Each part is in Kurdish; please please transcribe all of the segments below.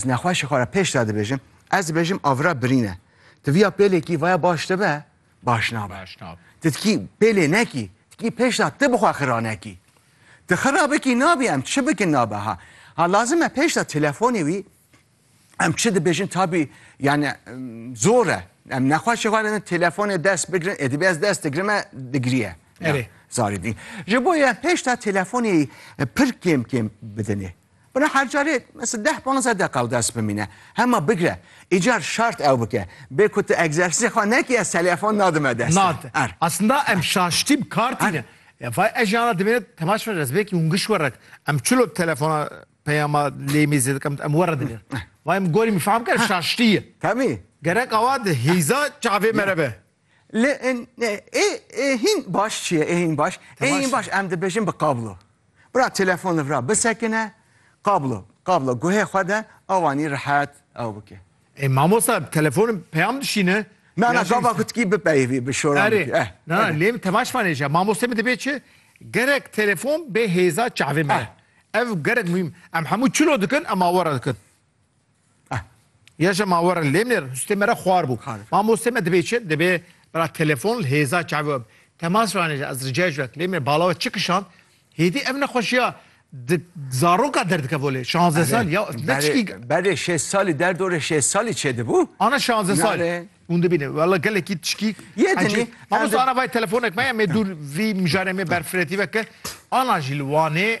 Ez nexweşê xwe re pêş de dibêjim, ez dibêjim avira birîn e. Ti viya pêlê kî vaya baş dibe, baş nabe. Ti ti kî pêlê nekî, ti kî pêş de ti bi xwe xira nekî. Ti xira bikî nabî em çi bikin nabe ha. Ha lazim e pêş de telefonê wî em çi dibêjin tabî yani zor e. Em nexweşê xwe re telefonê dest bigirin, ê dibê ez dest digirim e digiriye. Erê. Zarî dî. Ji bo ye pêş de telefonê pir kêm kêm bidinê. Bila her carê mesela deh panzdeh deqa ew dest bimîne. Hema bigre îcar şart ew bike. Bê ku tu egzersîzê xwe nekî ez telefon nadime dest. Nade. Aslında em şaştî bi kar tîne. Ya vay ez jana dimêne temaş min ez belkî hûn giş were em çilo telefona peyama lêmê zêde kem em were dinêr. Vay min gorî min fehm kir şaştî ye. Tabii. Gerek awa di hêza çavê mere be. Li ê hîn baş çi ye? Ê hîn baş ê hîn baş em dibêjin bi kablo. Bira telefon li vira bisekine kablo kablo guhê xwe de awanî rihet ew bike. Ê mamosta telefon peyam dişîne. Na na gava ku tikî bipeyivî bi şoran bikî. Erê na lê min tevaş vanê je mamostê min dibê çi gerek telefon bê hêza çavê me. Ev gerek muhîm em hemû çilo dikin em awe re dikin. Ya je ma were lêmnêr hustê me re xwar bû. Ma mostê me dibê çi? Dibê bira telefon li hêza çavê we temas ranê ji ez ricayê ji we lêmnêr bala we çi kişand hêdî ev nexweşiya di zaroka derdikeve lê şanze sal ya neçikî berê şêst salî derdorê şêst salî çêdibû. Ana şanze sal hûn dibîne wela gelekî tişkî yê dinî ma ana vay telefonek me ya mê dûr vî mijarê mê berfiretî veke ana jî li Wanê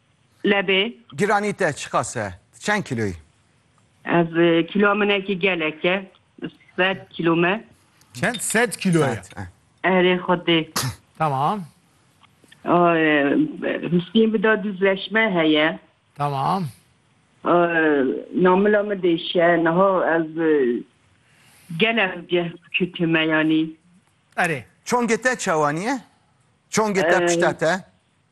Lebê. Giranî te çiqas e? Tu çend kîlo yî? Ez kîloa min ekî gelek e. Sed kîlo me. Çend? Sed kîlo ye. Erê xwedê. Tamam. Husîn bi da duz leş me heye. Tamam. Namila min dêşe. Niha ez gelek ceh bikutime yanî. Erê. Çongê te çawa niye? Çongê te pişta te?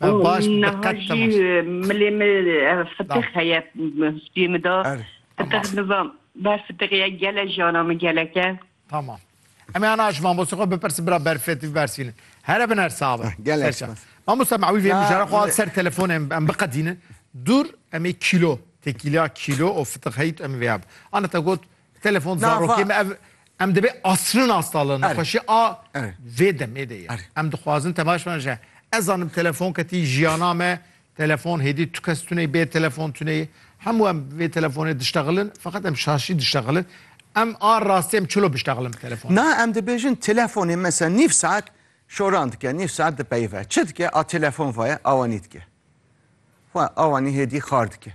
Niha jî milê me fitix heye stûyê min de. Fitix nizam ber fitixê ye gelek jana min gelek e. Tamam. Em ê ana ji mamoste xwe bipirsin bira berfê tu bibersivînin. Here bin her sax be. Gelek spas. Mamoste em ewî vê mijara xwe li ser telefonê em biqedînin. Dûr em ê kîlo têkîlya kîlo û fitix heyît em ê vêya bin. Ana te got Telefon zarokê me ev em dibê asrin astalin nexweşî a vê demê de ye. Em dixwazin temaş bane ji ez zanim telefon ketî jiyana me telefon hêdî tu kes tuneyî bê telefon tuneyî hemû em vê telefonê diştexilin feqet em şaşî diştexilin em a rastî em çilo biştexilin bi telefon. Na em dibêjin telefonê mesela nîv saet şoran dike nîv saet dipeyive çi dike a telefon vaye awanî dike xwe awanî hêdî xar dike.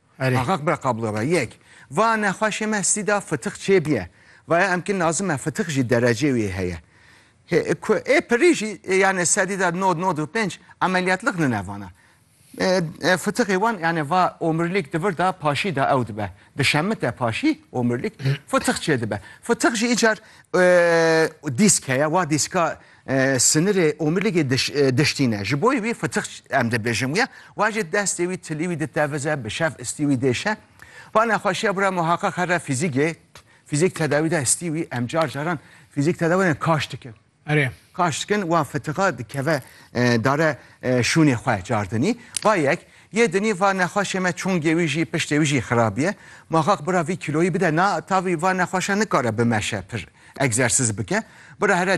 Axaq bira qablo be. Yek. Va nexweşê me stî da fitix çêbiye. Vaya emkî nazim e fitix jî derecê wî heye. Hê ku ê pirî jî yanê sedî da nod, nod û pênc emeliyatliq nine vana. Fitixê wan yanê va omrîlîk divir da paşî da ew dibe. Dişemite paşî omrîlîk fitix çêdibe. Fitix jî îcar dîsk heye. Wa dîska Sinirê omîrlîgê diştîne. Ji boî wî fitix em dibêjin wî ye. Wajê destê wî tilî wî ditevize, bi şev istî wî dêşe. Va nexweşiya bira muheqeq herre fîzîgê. Fîzîg tedawî da istî wî. Em car caran fîzîg tedawî kaş dikin. Erê. Kaş dikin wa fitixa dikeve dare şûnê xwe car dinî. Va yek yê dinî va nexweşê me çongê wî jî piştê wî jî xirab ye. Muheqeq bira vî kîloyî bide na tavî va nexweşa nikare bimeşe pir egzersîz bike. Bira herre